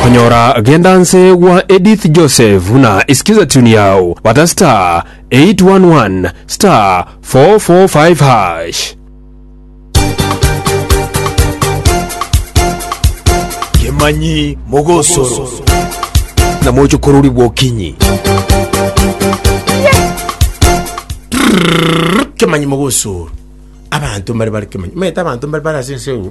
Konyora genda nse gwa Edith Joseph na isikiza tune yao bata star 811 star 445 hash. Kemanyi Mogosoro na mochokorori bw'okinyi. Kemanyi Mogosoro. Abanto mbare bare Kemanyi. Maete abanto mbare bare ase ense eye.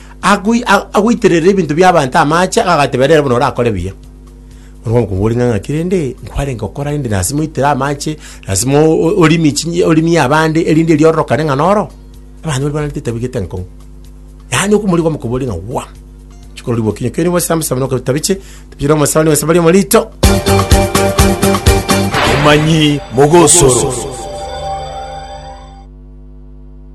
Agoi- a- agoiterera ebinto bi'abanto amache, agatebera ere buna orakore buya. Bono omokungu ore ng'a ng'aki rende, nkwarenge gokora rende lasima oitere amache, lasima o- o- orimie chinyi orimie abande, erinde riororokane ng'a noro, abanto baria barentete tabegete enkong'u. Yaani okomorigia omokungu ore ng'a waa, chikororigia bokinyi kere gose samusaba noka tabiche, tabiche na omosaani gose baria omorito. Omanyi mogosoro.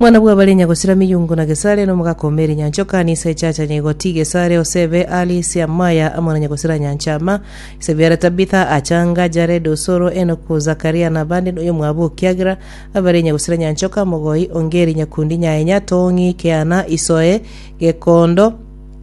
Mwana bw'abare nyagosira miyungu na Gesare, na omogaka o meeri nyancha okani ise echacha nyaigoti Gesare, Osebe, Ali, Siamaya, amo na nyagosira nyancha Ama. Ise biare Tabitha, Achanga, Jared, Osoro, Enoku, Zakaria, na abande noyo omwabo okiagera abare nyagosira nyancha oka mogoi, Ongeri, Nyakundi, Nyaenya, Tong'i, Keana, Isoe, Gekondo,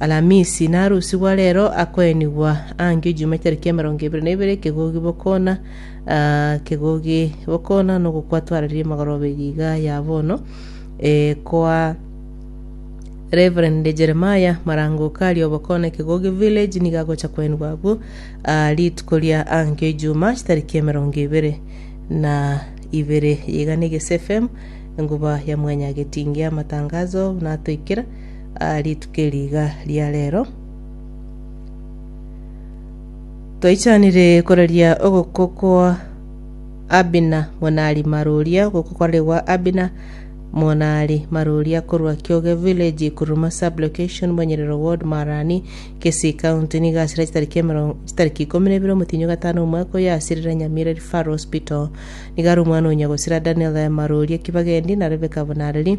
Alamisi, na arusi gwa reero akoenigwa angio Ijumaa etariki emerongo ebere na ibere ekegogi bokona ah, ekegogi bokona nogokwa twararirie magoroba eria iga ya bono eh, kwa Reverend Jeremiah Marangoka aria obokona ekegogi village nigo agocha koenigwa abwo ah, rituko ria angio Ijumaa chitariki emerongo ebere na ibere iga na Egese FM enguba ya mwanya getingi amatangazo natoikera aa rituko eri iga ria rero. Twaichanire koraria ogoko kwa Abina monari maroria ogoko kwaregwa Abina monari maroria korwa Kioge Village Kuruma Sub Location Monyerero Ward Marani Kisii County nigo asire chitariki emerongo chitariki ikomi na ibere omotinyo gatano omwaka oyo asirire Nyamira Referral Hospital nigo are omwana onya gosira Daniel maroria Kibagendi na Rebecca Bonareri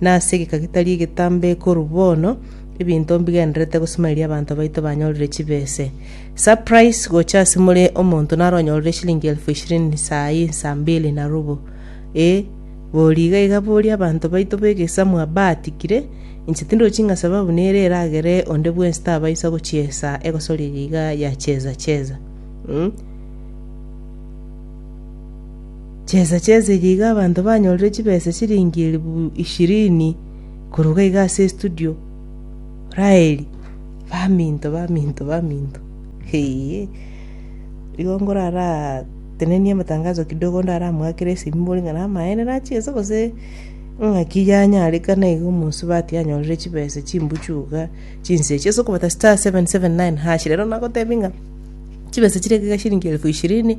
na ase egeka gitari egetambe korwa bono, ebinto mbigendererete gosima erio abanto baito banyorire chibese. Surprise gocha ase more omonto naro onyorire eshilingi elfu ishirini saa eye saa mbili na robo. Ee, bori iga iga bori abanto baito b'egesamu abaatikire, inche tindochi ng'a sababu nere eragere onde bwensi tabaisa gochiesa egosoria eye iga ya cheza cheza. Mh. Chinsa chi'esegi iga abanto banyorire chibesa chiringi elifu ishirini korwa iga iga ase estudio. Raeli, Baminto, baminto, baminto, eeiye. Igo nkoratenenie amatangazo kidogo ndaramoakere esimi mbore ng'a namaene nachi ense gose ng'aki yanyarekana iga omosubati anyorire chibesa chimbuchu iga chinsa echi. Ase okobata star seven seven nine hash rero nagotebia ng'a chibesa chire iga iga chiringi elifu ishirini.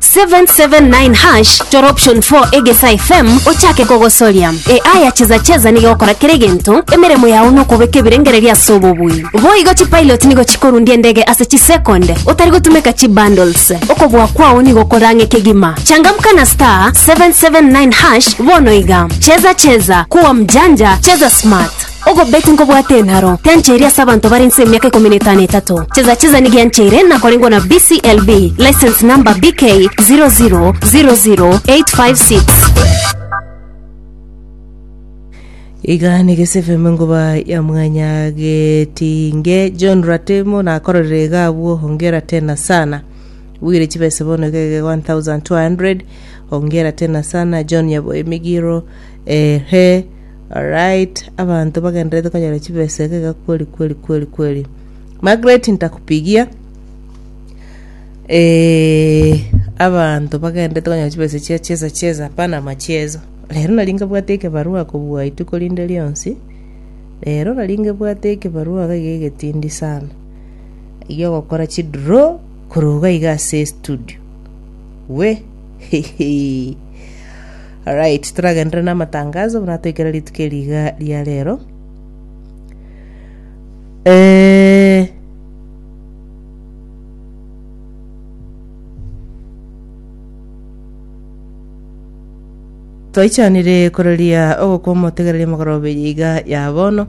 779# chora option 4 egesa fm ochake kogosoria AI ya cheza cheza nigo egokora kera egento emeremo yao nokobeka ebirengererio ase obobui boigo chipilot nigo chikorundia endege ase chisecond otari gotumeka chibundles okobua kwao nigo okore ang'e kegima changamka na star 779# bono iga cheza cheza kuwa mjanja cheza smart Ogobeti nkobwate enharo tiancheiri ase abanto bare inse emiaka ikomi na etano etato. Cheza cheza nigo yancheire nakorengwa na BCLB license number BK 0000856. Iga negese FM ngoba ya mwanya getinge John Ratemo nakororere iga abwo hongera tena sana bwire chibese bono iga iga 1200 hongera tena sana John yabo emigiro ehe Alright abanto bagenderete konyora chibesa egega kweli kweli kweli kweli Margaret ntakupigia eh abanto bagenderete konyora chibesa chia cheza cheza hapana machezo rero nari nkabwate ekebarua kobua ituko rinde rionsi rero nari nkebwate ekebarua iga iga egetindi sana egia ogokora chidraw korwa iga iga ase estudio we hehe. Alright, toragenderere namatangazo buna toikera rituko eri iga ria rero. Eh, twaichanire kororia ogokwa omotegereri omogorobe iga ya bono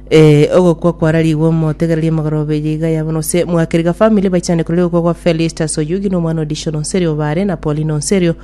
eh, ogokwa kwararigwe omotegereri omogorobe iga ya bono se mwakeriga family baichane kororia ogokwa gwa Felista Soyugi na omwana Odisho Nonserio bare na Paulino Nserio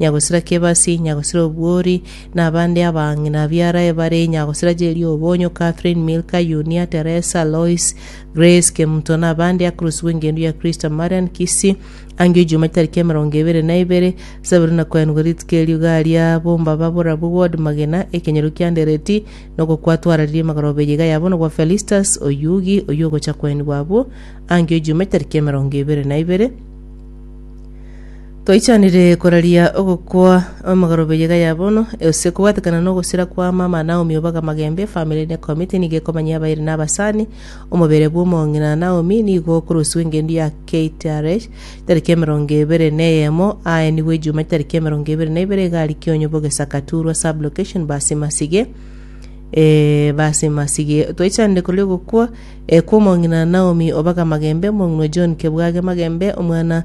nyagosira Kebasi, nyagosira Obwori, na abande abang'ina biarae bare nyagosira Jeria Obonyo, Catherine, Milka, Yunia, Teresa, Lois, Grace, Kemuto, na abande akorosirwe engencho ya Kristo, Marian Kisi, angio Ijuma chitariki emerongo ebere na ibere, Saburi na koenwa rituko erio garia bomba baborabwo Ward magena, ekenyoro kia Ndereti, na ogokwa twararirie magoroba eye iga yabonwa gwa Felistus, oyugi, oyio ogocha koenigwa abwo, angio Ijuma chitariki emerongo ebere na ibere, Twaichanire koraria ogokwa amagoro b'eyiga ya bono, gose kobwatekana na ogosira kwa mama Naomi obaga magembe, family ne committee nigo ekomanyia abairi na abasani, omobere bw'omong'ina Naomi nigo okorosiwa engendu ya KTRH tariki emerongo ebere na eyemo, aaenigwe Ejumati tariki emerongo ebere na ibere egari Kionyo Bogesa Katurwa sub location Basimasige eh, Basimasige. Twaichanire koraria ogokwa eh, kw'omong'ina Naomi obaga magembe, omong'ina o John Kebwage magembe, omwana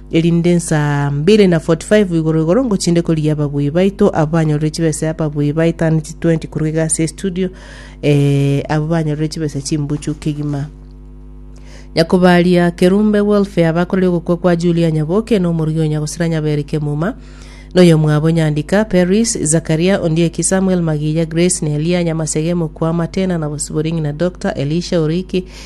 erinde nsaa mbiri na forty five igoro igoro ngochinde korigia ababui baito abo banyorire chibesa ababui baetane chi twenty korwa iga ase estudio eh, abo banyorire chibesa chimbuchu kegima nyakobaria kerumbe welfare abakorire ogokwa kwa julia nyaboke na omorui o nyagosera nyaberi kemuma noyomwabo nyandika paris zakaria ondieki samuel magiya grace nelia nyamasege mokwama tena na bosibori ng'ina dr elisha oriki